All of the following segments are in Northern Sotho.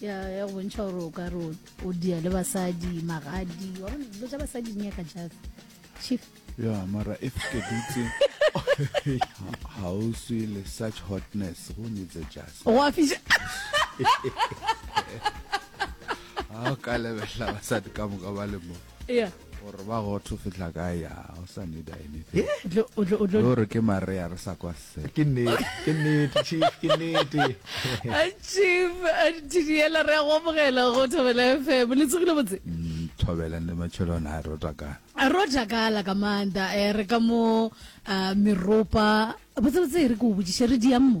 ya ya go bontšha gore o ka re o dia le basadi magadi wa bona dilo tša basadi di nyaka jase chief ya mara if ke dutse ga o swe le such hotness go needs a jase go a fiša ga o ka lebelela basadi ka moka ba le mo gore ba go tho fitla ka ya o sa need anything o re ke marea re sa kwa se ke nnete ke nnete chief ke nnete chief didiela re go bogela go thobela fm le tsogile botse mm, thobela ne matshelo na ro takala ro takala ka manda e eh, re ka mo ah, meropa botse botse re go botšiše re diammo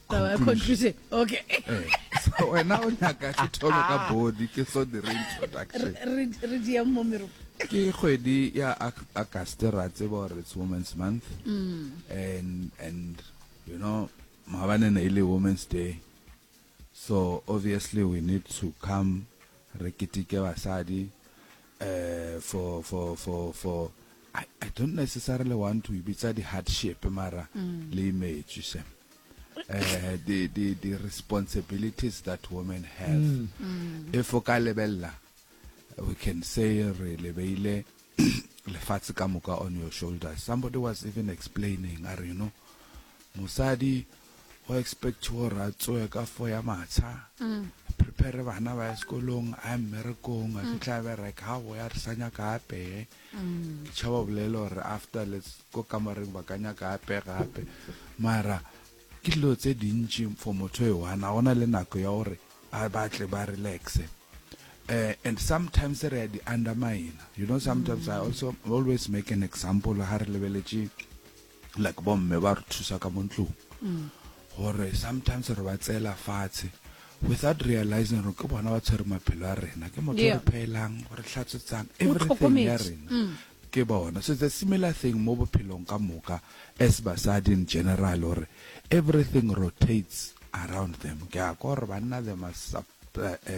taba ya conclusion okay eh, wena o nyaka ke thome ka ah. body ke so dire introduction re dia mo meropo ke kgwedi ya august ra tseba gore it's women's month mm. and and you know maabane ne e le women's day so obviously we need to come re keteke basadi uh, for for for for I, I don't necessarily want to bitsa di hardship mara mm. le image se uh, the, the, the responsibilities that women have mm. Mm. if o ka lebella we can say re lebeile lefatshe ka moka on your shoulders somebody was even explaining a re you know mosadi o expect gore a tsoe ka fo ya matsha mm. prepare bana ba ya sekolong a mmerekong a mm. fitlha bereka ga boya re sa nyaka apeye ke tšhaba bolele gore after let's ko kamareng ba ka nyaka ape gape mara ke dilo tse dintši for motho e one a gona le nako ya gore a batle ba relaxe uh, and sometimes re a di undermine you know sometimes mm. i also always make an example ga re lebeletše like bo mme ba re thusa ka mo ntlong gore sometimes re ba tseela fatshe without realizing gore ke bona ba tshwere maphelo a rena ke motho Yeah. re phelang re tlhatswetsang O everything ya tlhokometse. rena Mm. ke bona so it's a similar thing mo bophelong ka moka as basadi in general gore everything rotates around them ke a ko gore banna they must sup-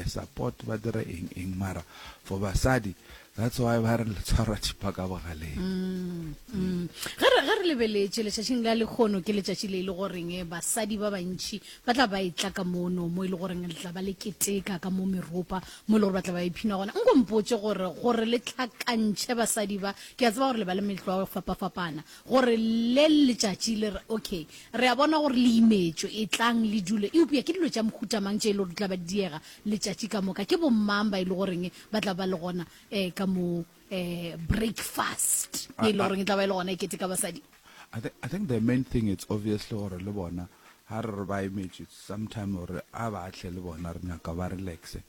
Support ba dira eng eng mara for basadi that's why ba re letshwara thipa ka bogaleng mm, mm. ge re lebeletše letšatšing la lekgono ke letšatši le e le goreng eh, basadi ba bantšhi ba tla ba etla ka mono mo e le goreng le tla ba le keteka ka mo meropa mo e le gore ba tla ba iphina gona nko mpotse gore gore le tlhakantšhe basadi ba ke a tseba gore le ba le metlwa fapafapana Gore le letšatši le re, Okay, re a bona gore le imetšwe, etlang le dule. Eupša ke dilo tša mohuta mang tše e lego di tla ba di diega letšatši ka moka? Ke bomang ba e lego goreng ba tla ba le gona um ka mo um breakfast ye e lego goreng e tla ba e le gona e keteka basadi? I think, I think the main thing it's obviously gore le bona ha re re ba emetšwe, it's sometime gore a ba tle le bona re nyaka ba relaxe.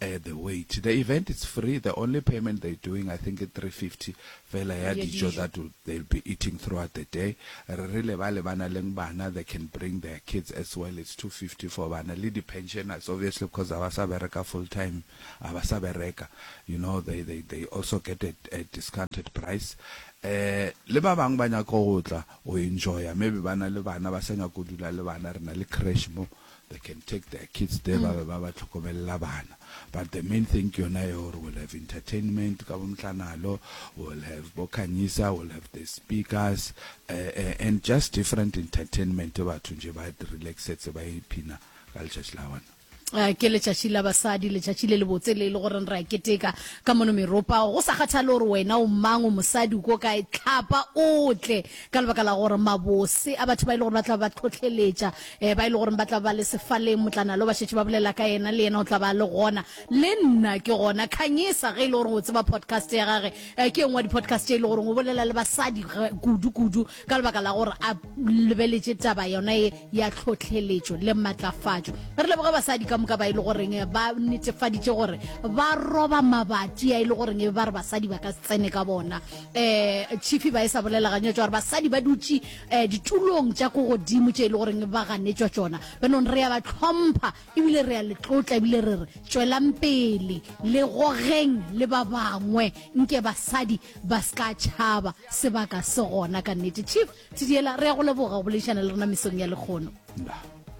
at the wait the event it's free the only payment they doing I think ke 350 fela ya dijo that will, they'll be eating throughout the day re rile ba le bana leng bana they can bring their kids as well it's 250 for bana le di pensioners obviously because a ba sa bereka full time a ba sa bereka you know they they they also get a, a discounted price eh le ba bang ba nyaka go tla o enjoya maybe bana le bana ba sa nyaka go dula le bana rena le crash mo They can take their kids there ba be ba ba hlokomelela bana but the main thing ke yona ye gore we'll have entertainment ka bomhlanalo, we'll have bo Khanyisa, we'll have the speakers eh, eh, and just different entertainment batho nje ba relaxetse ba iphina ka letšatši la bona. Eh, ke letšatši la basadi letšatši le lebotse le e le goreng re a keteka ka mono meropa go sa kgathale gore wena o mang o mosadi o ko kae tlhapa o tle ka lebaka la gore mabose a batho ba e le gore ba tla ba tlhotlheletša um ba e le goreng ba tla ba le sefaleng motlana lo ba šetše ba bolela ka yena le yena o tla ba le gona le nna ke gona khanyesa ge e le goreng o tseba podcast ya gage um ke engwe wa di-podcast e le goreng o bolela le basadi kudu-kudu ka lebaka la gore a lebeletše taba yona e ya tlhotlheletšo le matlafatšo re leboge basadi ka moka ba e le goreng ba netefaditše gore ba roba mabati a e le goreng e ba re basadi ba ka tsene ka bona um chifi ba e sa bolela ganyetso gore basadi ba dutše um ditulong tša ko godimo tše e le goreng ba ganetšwa tšona benong re ya ba tlhompha ebile re ya letlotla ebile re re tšwelang pele le gogeng le ba bangwe nke basadi ba se ka tšhaba sebaka se gona ka nnete chief tshediela re ya go leboga go boledišana le rena mesong ya lekgono